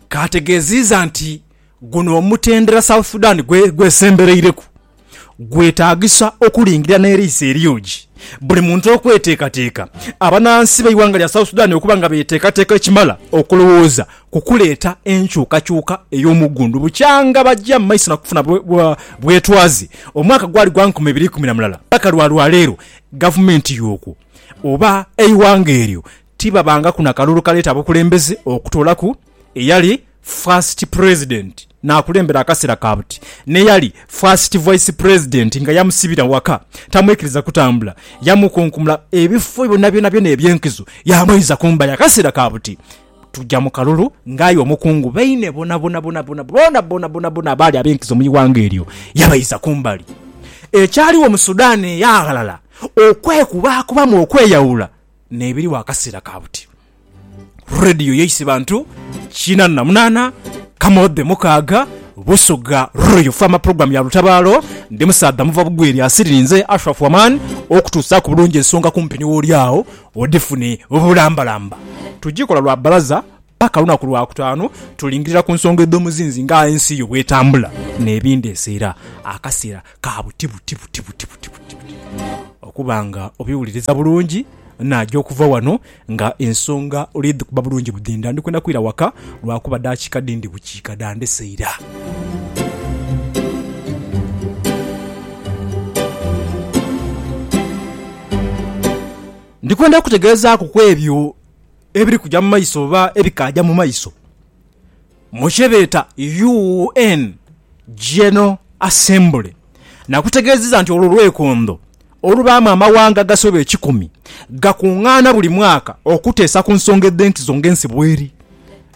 Kaategeziiza nti guno omutendera South Sudan gwesembereireku gwetaagisa okulingira n'eriiso eryogi buli muntu okweteekateeka abanansi b'eighanga lya South Sudan okuba nga beteekateeka ekimala okulowooza ku kuleeta enkyukakyuka ey'omuggundu bukyanga baja mu maiso nakufuna bwetwaze omwaka gwali gwa nkumi ibiri ikumi na mulala paka lwa lwaleero gavumenti y'okwo oba eighanga eryo Tibabangaku na kalulu kaleeta bukulembeze okutoolaku eyali First President n'akulembera akaseera ka buti n'eyali First Vice President nga yamusibira waka tamwikiriza kutambula, yamukunkumula ebifo byonabyona eby'enkizo yaamweiza ku mbali akaseera ka buti tuja mu kalulu ng'aye omukungu baine boonaboonaboonaboonaboonaboonaboona abaali ab'enkizo mu ighanga eryo yabaiza ku mbali. Ekyaliwo mu Sudan eya ghalala okwekubaakubamu okweyawula n'ebiriwo akasiira ka buti. Radio yaise bantu kinaana na munaana, Kamodhe mukaaga, Busoga Royal Farmer Program ya lutabaalo. Ndi musaadha muva bugwi lya siri ninze Ashraf Waman okutuusaaku bulungi ensonga kumpi ni wooli agho odhifune bulambalamba. Tugikola lwa bbalaza. Paka lunaku lwa kutaanu tulingirira ku nsonga edh'omuzinzi nga ensi yo bw'etambula n'ebindi ese era akaseera ka buti buti buti buti buti buti buti okuba nga obiwuliriza bulungi. Naja okuva wano nga ensonga oli dhikuba bulungi budhinda. Ndi kwenda kwira waka lwa kuba daakika dhi ndi bukiika dha ndese ira. Ndi kwenda kukutegeezaaku ku ebyo ebiri kuja mu maiso oba ebikaaja mu maiso mu kye beeta UN General Assembly nakutegeezeza nti olwo lwekondho olubaamu amawanga agasoba ekikumi gakungaana buli mwaka okuteesa ku nsonga edh'enkizo ng'ensi bweri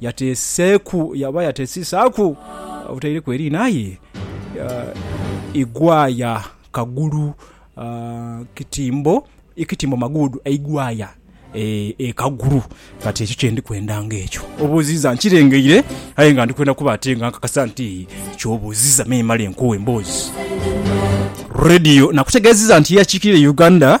Yateeseeku oba yateesisaaku otaireku eriina aye Igwaya kagulu kitimbo, kitimbo maguudu eigwaya e kagulu. Kati ekyo kye ndi kwenda nga ekyo obuuziza nkirengeire aye nga ndi kwenda kuba ate nga nkakasa nti ky'obuuziza memale nkuwe emboozi. Radio nakutegeezizza nti ye akiikirira Uganda.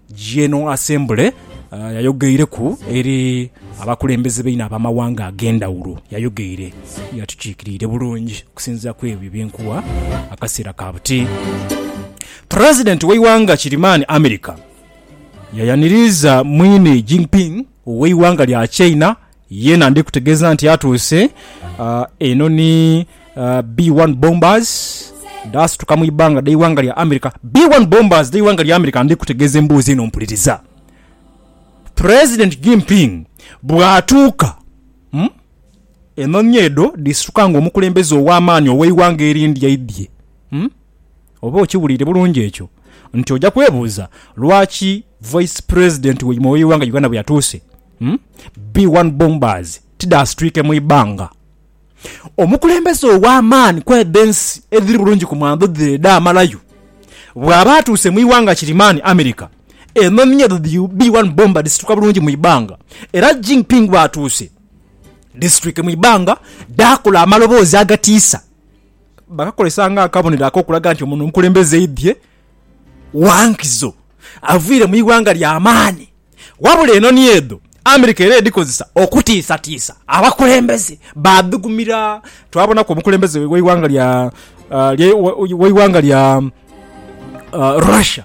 General Assembly yayogeireku eri abakulembeze baine ab'amawanga ag'endhawulo. Yayogheire ye atukiikiriire bulungi okusinziira ku ebyo bye nkuwa akaseera ka buti. President w'eighanga kirimaani America yayaniriiza mwine Jinping ow'eighanga lya China Yena ndi kutegeza nti atuuse. Eno ni B-1 bombers dhaasituka mu ibanga dh'eighanga lya America. B-1 bombers dh'eighanga lya America ndi kutegeza emboozi eno mpuliriza. President Jinping bw'atuuka mu enhonhi edho dhisituka nga omukulembeze ow'amaani ow'eighanga erindi aidhye mu. Oba okiwuliire bulungi ekyo nti oja kwebuuza lwaki Vice President waimwe ow'eighanga Uganda bwe yatuuse? B1 Bombers tidhasitwike mu ibanga. Omukulembeze ow'amaani ku edho ensi edhiri bulungi ku mwandho dhe edhaamalayo, bw'aba atuuse mu ighanga kirimaani America, enhonhi ye edho dhi B1 Bomber dhisituka bulungi mu ibanga era Jinping bw'atuuse dhisitwike mu ibanga dhaakola amaloboozi agatiisa bakakozesa ng'akabonero ak'okulaga nti ono omukulembeze aidhye gha nkizo, avaire mu ighanga ly'amaani. Wabula enoni edho America era edhikozesa okutiisatiisa abakulembeze baadhigumira. Twabonaku omukulembeze w'eighanga lya, lya, w'eighanga lya Russia,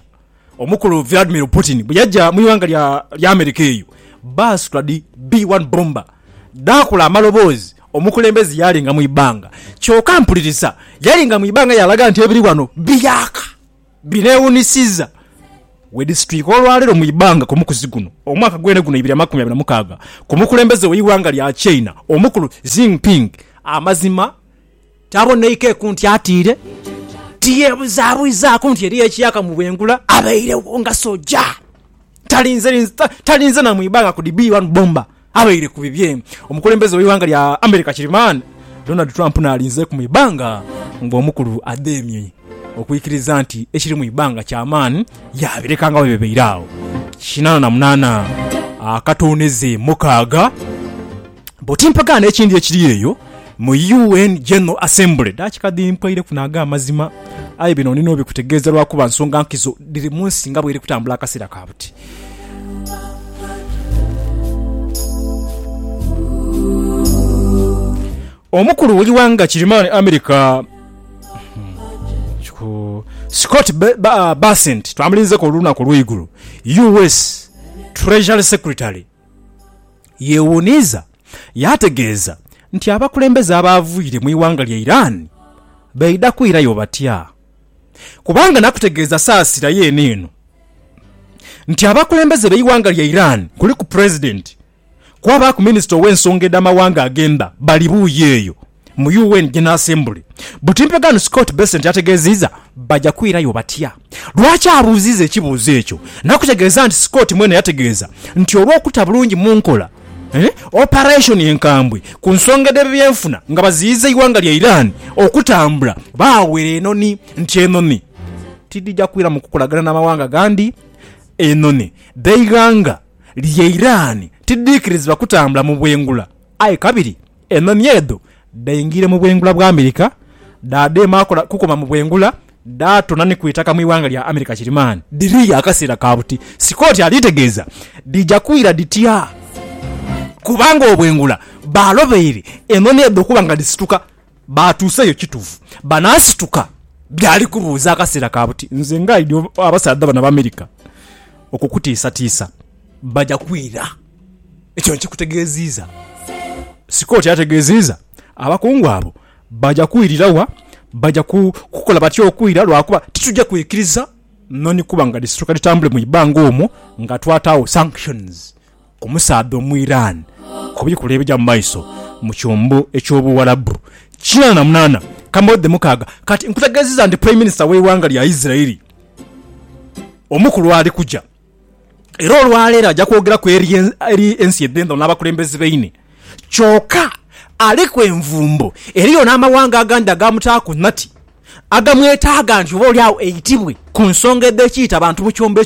omukulu Vladimir Putin bwe yaja mu ighanga lya, lya America eyo, baasitula dhi B-1 bomber dhaakola amaloboozi omukulembeze yaalinga mu ibanga. Kyoka mpuliriza, yalinga mu ibanga yaalaga nti ebiri ghano biyaaka. Bineewuunisiiza we disituliika olwaleero mu ibanga ku mukuzi guno omwaka gwene guno ibiri amakumi abiri na mukaaga ku mukulembeze we ighanga lya China omukulu Xinping amazima taboneikeku nti atiire tiyebuzabuzaaku nti eriyo ekyakamuwengula abairegho nga soja talinze na mu ibanga ku dibiiwanu bomba. Abaire ku bibye, omukulembeze w'eighanga lya America Kirimani Donald Trump n'alinzeeku mu ibanga ng'omukulu adheemye okwikiriza nti ekiri mu ibanga ky'amaani yaabireka nga bwe bibaire agho. Kinaana na munaana akatoonheze mukaaga boti mpagaano ekindi ekiri eyo mu UN General Assembly. Daakika dhimpweireku na ag'amazima aye bino ndi n'obikutegeeza lwakuba nsonga nkizo dhiri mu nsi nga bw'eri kutambula akaseera ka buti. Omukulu w'eighanga Kirimaani America, Scott Bessent twamulinzeku olunaku olw'eigulo, US Treasury Secretary yeewuniiza yaategeeza nti abakulembeze abaavaire mu ighanga lya Iran baidha kwirayo batya? kubanga nakutegeeza saasira yeene eno nti abakulembeze b'eighanga lya Iran kuliku Pulezidenti kwabaaku Minisita ow'ensonga edh'amawanga agh'emba bali buuyi eyo mu UN General Assembly buti mpegano Scott Bessent ategeeziiza. Baja kwirayo batya? Lwaki abuuziiza ekibuuzo ekyo? Nakutegeeza nti Scott mwene yategeeza nti olw'okuta bulungi mu nkola, Operation enkambwe ku nsonga edh'ebyenfuna nga baziyiza eighanga lya Iran okutambula baawera enoni nti enoni tidhija kwira mu kukolagana na mawanga gandi Enoni dh'eighanga lya Iran tidhiikirizibwa kutambula mu bwengula aye kabiri Enhonhi edho dhaingira mu bwengula bwa Amerika, dhaadheema kukoma mu bwengula, dhaatona ni ku itaka mu ighanga lya Amerika Kirimaani. Dhiriyo akaseera ka buti, Scott aliitegeeza. Dhija kwira dhitya? Kubanga obwengula baalobeire enhonhi edho okuba nga dhisituka. Baatuuseyo kitufu? Banaasituka? Byali kubuuza akaseera ka buti. Nze ngaidi abasaadha bano Abaamerika okukutiisatiisa. Baja kwira. Ekyo nkikutegeeziiza sika oti ategeeziiza. Abakungu abo baja kwirira wa? Baja kukola batya okwira? Lwakuba tituja kwikiriza noni kuba nga dhisituka dhitambule mu ibanga omwo nga twataagho sanctions ku musaadha Omuiran ku bikula ebija mu maiso mu kyombo eky'Obuwarabu. Kinaana na munaana kamaudhi mukaaga kati. Nkutegeeziiza nti Prime Minister w'eighanga lya Israeli omukulu ali kuja. Era olwaleero aja kwogeraku eri ensi edh'endhalo n'abakulembeze baine. Kyoka aliku envumbo, eriyo n'amawanga agandi agaamutaaku nati agamwetaaga nti oboolyawo eitibwe ku nsonga edh'ekiita bantu mu kyombo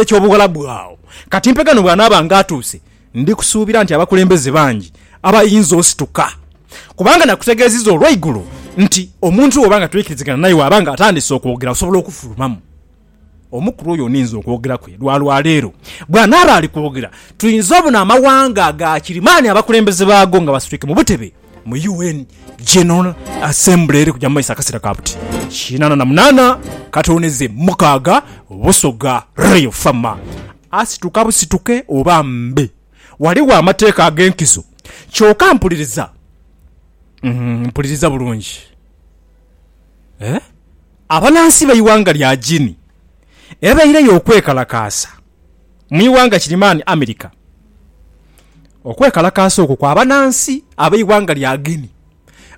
eky'Obuwalabu agho. Kati mpegano bw'anaaba ng'atuuse, ndi kusuubira nti abakulembeze bangi abayinza osituka. Kubanga nakutegeezizza olwaigulo nti omuntu bw'oba nga twikirizigana naye, waaba ng'atandise okwogera osobola okufulumamu. Omukulu oyo ninze okwogera kwe lwa lwa leero. Bw'anaaba ali kwogera, twinza obona amawanga aga kirimaani abakulembeze baago nga basitwike mu butebe mu UN General Assembly eri kugya mu maiso akaseera ka buti kinaana na munaana katooneze mukaaga. Busoga Royal Farmer asituka busituke oba mbe ghaligho amateeka ag'enkizo. Kyoka mpuliriza, mpuliriza bulungi. Abanansi b'eighanga lya Guinea ebaireyo okwekalakaasa mu ighanga Kirimani, America. Okwekalakaasa okwo kwa banansi ab'eighanga lya Guinea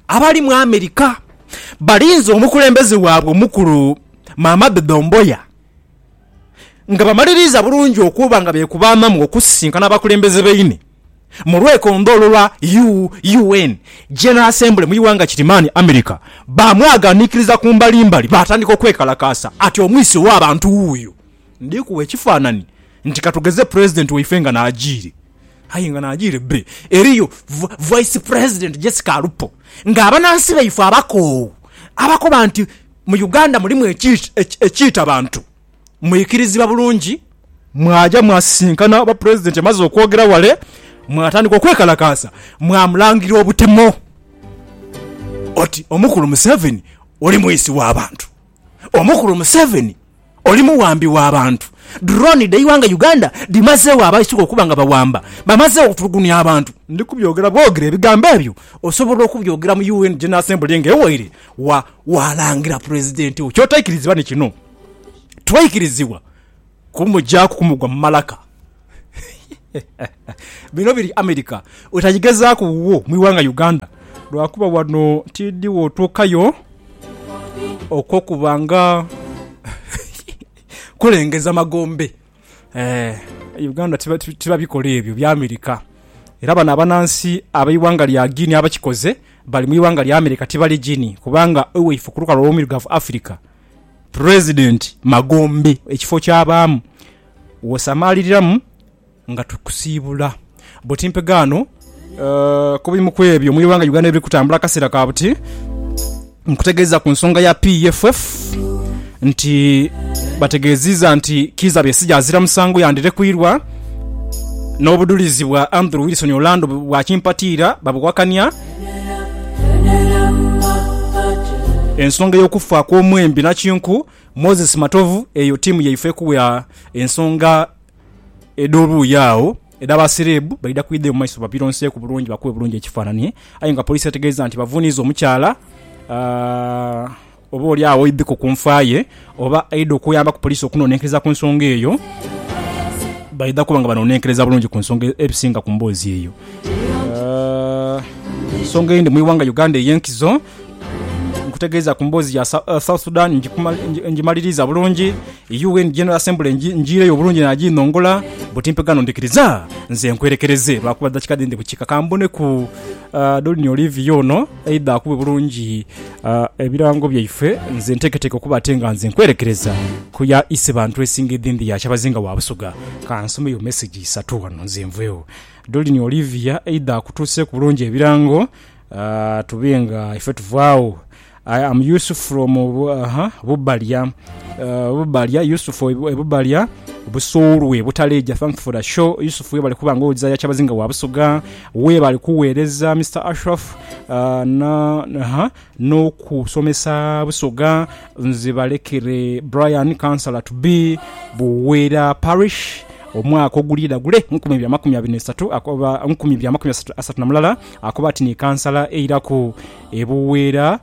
abali mu America balinze omukulembeze waabwe omukulu Mamadu Doumbouya nga bamaliriiza bulungi okuba nga bekuba amamu okusisinkana abakulembeze baine. mu lwekondholo lwa UN General Assembly mu ighanga Kirimani, America, baamwaganiikiriza ku mbalimbali baatandika okwekalakaasa ati, Omwisi ow'abantu wuuyo! Ndi kuwa ekifaanani nti ka tugeze Pulezidenti waife nga n'ajiire. Aye nga n'ajiire bbe, eriyo Vice President Jessica Alupo ng'abanansi baife abakoowu abakoba nti mu Uganda mulimu ekiita bantu. mwikirizibwa bulungi, mwaja mwasisinkana oba Pulezidenti amaze okwogera wale, mwatandika okwekalakaasa, mwamulangira obutemo oti Omukulu Museveni oli mwisi wa bantu, Omukulu Museveni oli muwambi wa bantu, drone dh'eighanga Uganda dhimazegho abaisuka okuba nga bawamba, bamazegho okutulugunya abantu. Ndi kubyogera bwogere ebigambo ebyo osobola okubyogera mu UN General Assembly ng'ewaire wa, waalangira Pulezidenti wo ky'otaikirizibwa ni kino. twaikirizibwa kumugyaku kumugwa mu malaka. Bino biri America wetagigezaaku wuwo mu ighanga Uganda lwakuba wano tiidhi wotuukayo okw'okuba nga kulengeza magombe. Eeh Uganda tiba bikola ebyo bya America era bano abanansi ab'eighanga lya Guinea abakikoze bali mu ighanga lya America tibali Guinea kubanga ewaife ku lukalu olw'omuirugavu Africa President magombe ekifo kyabaamu wosamaliriramu nga tukusiibula buti mpegaano kubimu kwebyo muli wanga Uganda ebiri kutambula akaseera kabuti nkutegeeza kunsonga ya PFF nti bategeziiza nti Kiiza Besigye azira musango yandirekwirwa nobudulizi bwa Andrew Wilson Orlando bwakimpatiira babuwakania. Ensonga ey'okufa kw'omwembi nakinku Moses Matovu eyo tiimu yaife ekuwa ensonga edh'oluuyi agho edha ba sereebu baidha kwidha eyo mu maiso babironseeku bulungi bakube bulungi ekifaananhi aye nga poliisi etegeeza nti bavuuniiza omukyala ah, Oba oli agho oidhiko ku nfa ye oba aidha okuyambaku poliisi okunonenkereza ku nsonga eyo, baidha kuba nga banonenkereza bulungi ku nsonga ebisinga ku mboozi eyo. Ensonga eyindi mu ighanga Uganda ey'enkizo, nkutegeeza ku mboozi ya South Sudan ngimaliriiza bulungi, UN General Assembly njiireyo bulungi naaginhongola, buti mpe ghano ndhikiriza nze nkwerekereze lwakuba dakiika dhindhi bukiika kamboneku Dolly Olivia ono. Aidha akube bulungi ebirango byaife, nze nteeketeeke okuba ate nga nze nkwerekereza ku ya Isebantu esinga edhindi ya Kyabazinga wa Busoga. Ka nsomeyo mesegi isatu ghano nze nveegho. Doreen Olivia, Aidha akutuuseeku bulungi ebirango tube nga ife tuvaagho. I am Yusuf from Bubalya, Bubalya, Yusuf e Bubalya, Busoolwe, Butaleja. Thanks for the show Yusuf, webale kuba nga owoza ya Kyabazinga wa Busoga. Webale kughereza Mister Ashraf nokusomesa busoga nze balekere Brian councilor to be Buwera parish omwaka ogulidha gule nkumi ibiri amakumi abiri nesatu akoba nkumi ibiri amakumi asatu namulala akoba ati ni councilor eiraku ebuwera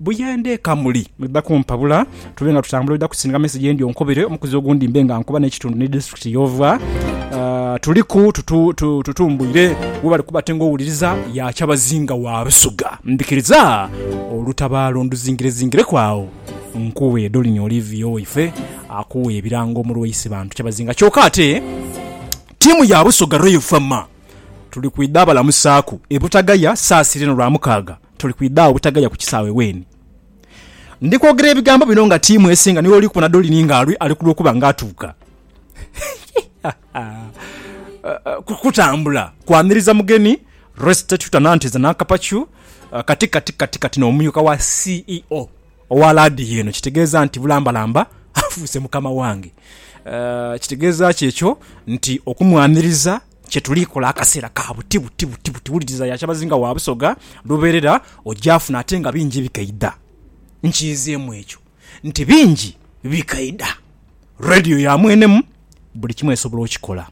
Buyende eka muli, mwidha kumpabula tube nga tutambula oidha kusindika mesegi endi onkubire omukuzi ogundi mbe nga nkuba n'ekitundu ni disiturikiti y'ova. Tuliku tutumbuire we bali kuba ate ng'owuliriza ya Kyabazinga wa Rusuga. Ndhikiriza olutabaalo nduzingirezingireku agho nkuwe Dolini Olivia owaife akuwe ebirango mu lwa Isibantu Kyabazinga. Kyoka ate tiimu ya Busoga Royal Fa Ma tuli kwidha balamusaaku e Butagaya Saasira eno Lwamukaaga tuli kwidha agho butagaya ku kisaawe weeni. Ndi kwogera ebigambo bino nga tiimu esinga niwe oli kubona Dolini nga ali ku lw'okuba nga atuuka kutambula kwaniriza mugeni Restituta Nanteza Nakapacu, kati kati kati kati n'omumyuka wa CEO owa laadiyo eno. Kitegeeza nti bulambalamba afuuse mukama wange. Kitegeeza ki ekyo? Nti okumwaniriza. kye tuli kola akaseera ka buti buti buti buti. Wuliriza, ya kyabazinga wa Busoga lubeerera ogyafuna ate nga bingi bikaidha. Nkiizeemu ekyo nti bingi bikaidha. Radio ya mwenemu, buli kimu esobola okikola.